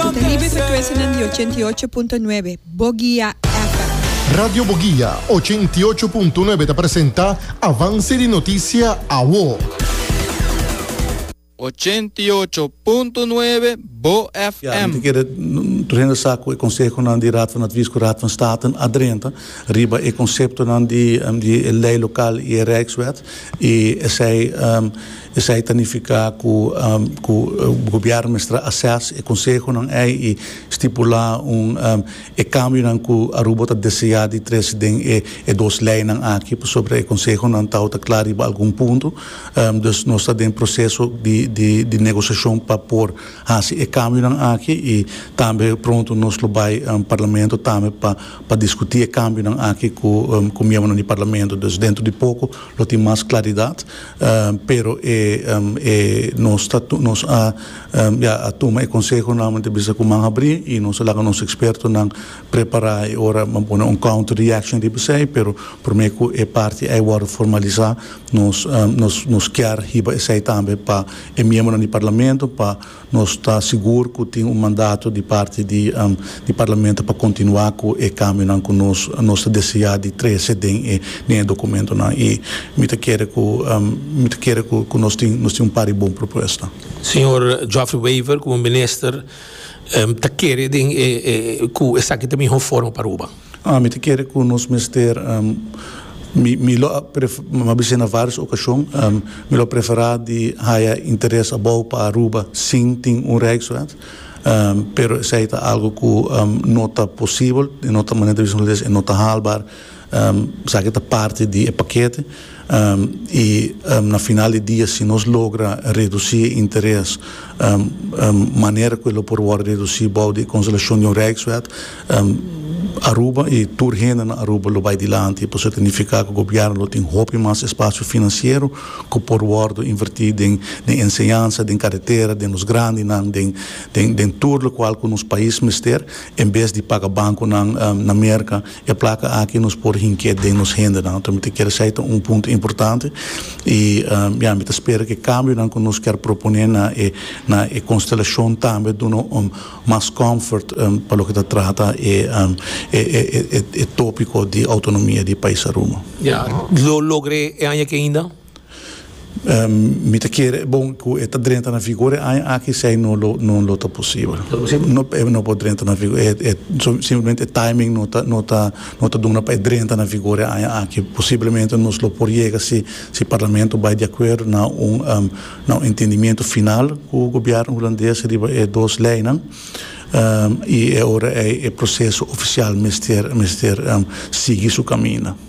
Cu ta libre frecuencianan di ochenta y ocho punto nuebe Boguia FM. Radio Boguia ochenta y ocho punto nuebe ta presenta Avance di Noticia Awo. Ochenta y ocho punto nuebe BoFM. Antes keda regresa cu e consehonan di Raad van Advies cu Raad van State a drenta riba e conceptonan di e ley local y e Rijkswet y esey Esei ta nifiká ku ku gobièrnu mester asès e konsehonan ei i stipulá un e kambionan ku Aruba ta deseá di trese den e e dos leinan aki pasobra e konsehonan ta outa kla riba algun punto. Dus nos ta den proseso di di di negosiashon pa por hasi e kambionan aki i tambe pronto nos lo bai Parlamento tambe pa pa diskutí e kambionan aki ku ku miembronan di Parlamento. Dus dentro di poko lo tin mas klaridat. Pero e e nos ta nos a ya a tuma e konseho nòmalmente bisa ku man habrí i nos a laga nos ekspertonan prepará e ora nan pone un counter reaction riba esei, pero promé ku e parti ei wòrdu formalisá nos nos nos kier hiba esei tambe pa e miembronan di parlamento pa Nos ta sigur cu tin un mandato di parti di di Parlamento pa continua cu e cambionan cu nos nos ta desea di trece den e den e documentonan y mi ta kere cu mi ta kere cu cu nos tin nos tin un par di bon propuesta. Señor Geoffrey Wever como Minister ta kere den e e cu esaki ta miho forma pa Aruba. Ah, mi ta kere ku nos mester, mi mi lo a prefera, bisai na vários okashon, mi lo a preferá di haya interes abou pa Aruba sin tin un Rijkswet, pero esei ta algu ku no ta posibel, e no ta manera di a bisa nos holandés, e no ta haalbaar, esaki ta parti di e pakete. I na final di dia si nos logra redusí e interes manera ku e lo por wòrdu redusí bou di e konsolashon di un rijkswet, Aruba i tur hende na Aruba lo bai dilanti. Pasobra ta nifiká ku gobièrnu lo tin hopi mas espasio finansiero ku por wòrdu invertí den enseñansa, den karetera, den nos grandinan, den tur lokual ku nos pais mester, en bes di paga bankunan na Merka. E plaka aki nos por hink'é den nos hendenan. Ta mi ta kere esei ta un punto importante i ya mi ta spera ku e kambionan ku nos ker proponé na e na e konstelashon tambe duna un mas comfort pa loke ta trata e e e tópiko di outonomia di e pais Aruba. Ya lo logr'é e aña aki ainda? Mi ta kere e bon ku e ta drenta na vigor e aña aki esei no lo no lo ta posibel. No lo posibel? No e no por drenta na vigor e simplemente e timing no ta no ta no ta duna pa e drenta na vigor e aña aki posiblemente nos lo por yega si si parlamento bai di akuerdo na un na un entendimiento final ku gobièrnu hulandes riba e dos leinan i e ora ei e proseso ofisial mester mester sigui su kaminda.